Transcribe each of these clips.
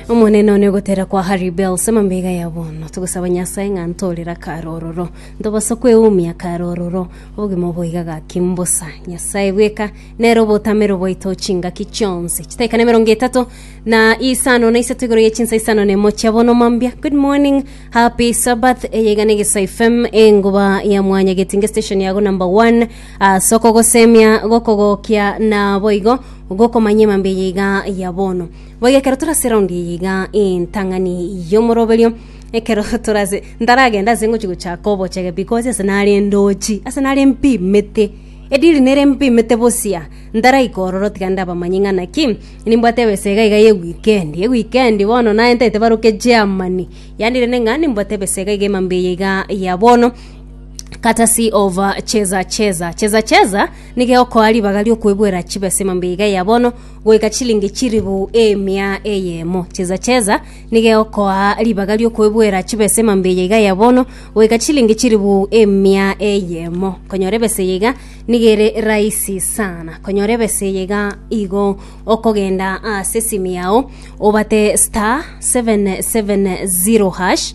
Omonene one ogotera kwa Harry Bells amambega ya bono togosaba Nyasaye ng'a ntorere akare ororo ntobasa kweumia akare ororo obogima oboiga gaki mbosa Nyasaye bweka nere obotamero bwaito chingaki chionsi chitaika na emerongo etato na isano na isato igoro ye chinsa isano na emo chia bono mambia good morning happy sabbath eyeiga na egesaifem engoba ya mwanya getinge station yago number one Ase okogosemia gokogokia naboigo gokomanya emambia eye iga ya bono. Boigo ekero tore ase eraundi eye iga entang'ani y'omoroberio ekero tore ase ntaragenda ase ngochi gochaka obochege because ase nare ndochi ase nare mpimete ediri nere mpimete bosia ntaraika ororo tiga ndabamanye ng'a naki nimbwate ebesa iga iga ya ewikendi ewikendi bono naye ntaete baroke Germany yaani rende ng'a nimbwate ebesa iga iga emambia eye iga ya bono Courtesy of uh, Cheza Cheza. Cheza Cheza nigo egokoa ribaga riokwebwera chibesa emambe iga ya bono goika chilingi chiribu emia eyemo. Cheza Cheza nigo egokoa ribaga riokwebwera chibesa emambe eye iga ya bono goika chilingi chiribu emia eyemo. Konyora ebesa eye iga nigo ere rahisi sana. Konyora ebesa eye iga igo okogenda ase esimu yao obate star 770 hash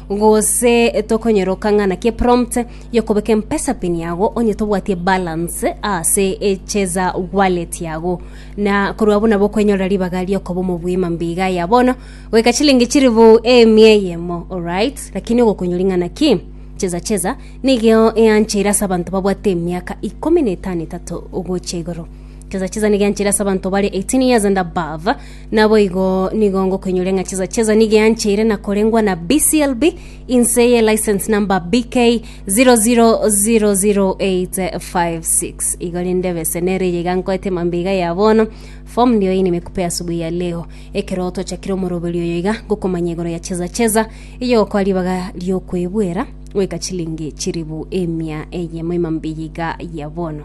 Gose tokonyoroka ng'a naki eprompt y'okobeka empesapin yago onye tobwatie balance ase echeza wallet yago na korwa abwo nabo okwenyorera ribaga riokoba omobui mambiga ya bono goika chilingi chiribu emia eyemo alright lakini ogokonyori ng'a naki cheza cheza nigeo eancheire ase abanto babwate emiaka ikomi na etano etato gochia igoro cheza cheza nigo eancheire ase abanto bare 18 years and above Naboigo nigo ngokoinyoria ng'a chesa chesa nigo eancheire na korengwa na BCLB inse ye license number BK 0000856 igo rende bese nere eye iga nkoete mambia iga ya bono form ndio hii nimekupe asubuhi ya leo ekero tochakire omoroberi oyo iga ngokomanya igoro ya chesa chesa eye okoa ribaga riokoebuera goika chilingi chiribu emia eyemo emambia eye iga ya bono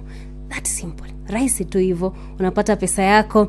that simple rahisi tu hivo unapata pesa yako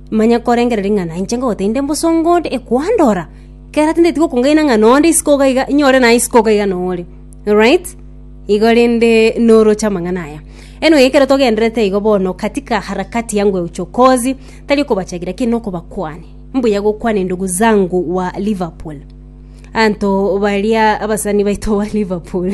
Manya korengereria ng'a nainche ngogotebi nde mbosongo onde ekwandora. Kera tindeti gokungaina ng'a nonde isiko iga iga, inyore naye isiko iga iga nore. Right? Igo rende noroche amang'ana aya. Anyway, ekero togendererete igo bono katika harakati yangu ya uchokozi, tari okobachagia lakini nokobakwania. Mbuya gokwania ndugu zangu wa Liverpool. Anto baria abasani baito ba Liverpool.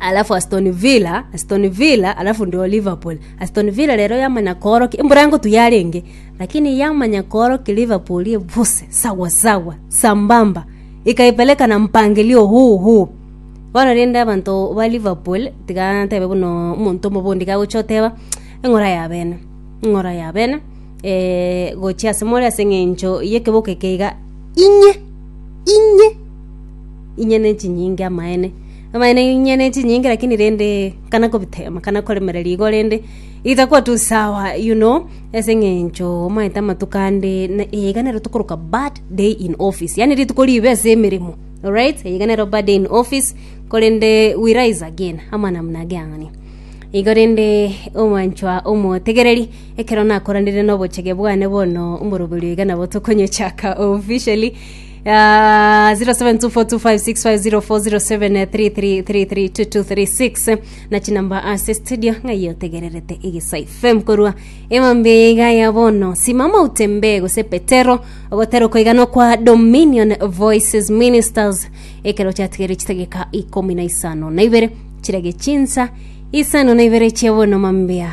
alafu Aston Villa, Aston Villa alafu ndio Liverpool. Aston Villa rero yamanya koorokia embura ngotu yarenge lakini yamanya koorokia Liverpool ebose sawa sawa sambamba ikaipeleka na mpangilio huu huu bono rende abanto ba Liverpool tiga ntebe buna omonto omobe onde iga agocha oteba eng'ora ya bene eng'ora ya bene eh, gochia ase more ase eng'encho y'ekeboko eke iga inye inye inye ne chinyinga amaene Amang'ana inye ne chinyinge lakini rende kana kobitema kana koremereria igo rende itakuwa tu sawa you know ase eng'encho omanyete amatuko ande na eye iga nero tokoroka bad day in office yaani rituko ribe ase emeremo alright eye iga nero bad day in office korende we rise again amo namna age ang'ani igo rende omwanchwa omotegereri ekero nakoranire na obochege bwane bono omoroberio iga nabo tokonyochaka officially 07242506504073332236 na chinamba ase studio ng'ai otegererete egesae fm korwa emambia eye iga ya bono simama utembee gose petero ogotera okoiganwa kwa dominion voices ministers ekero chatigeire chitageka ikomi na isano na ibere chirage chinsa isano na ibere chia bono mambia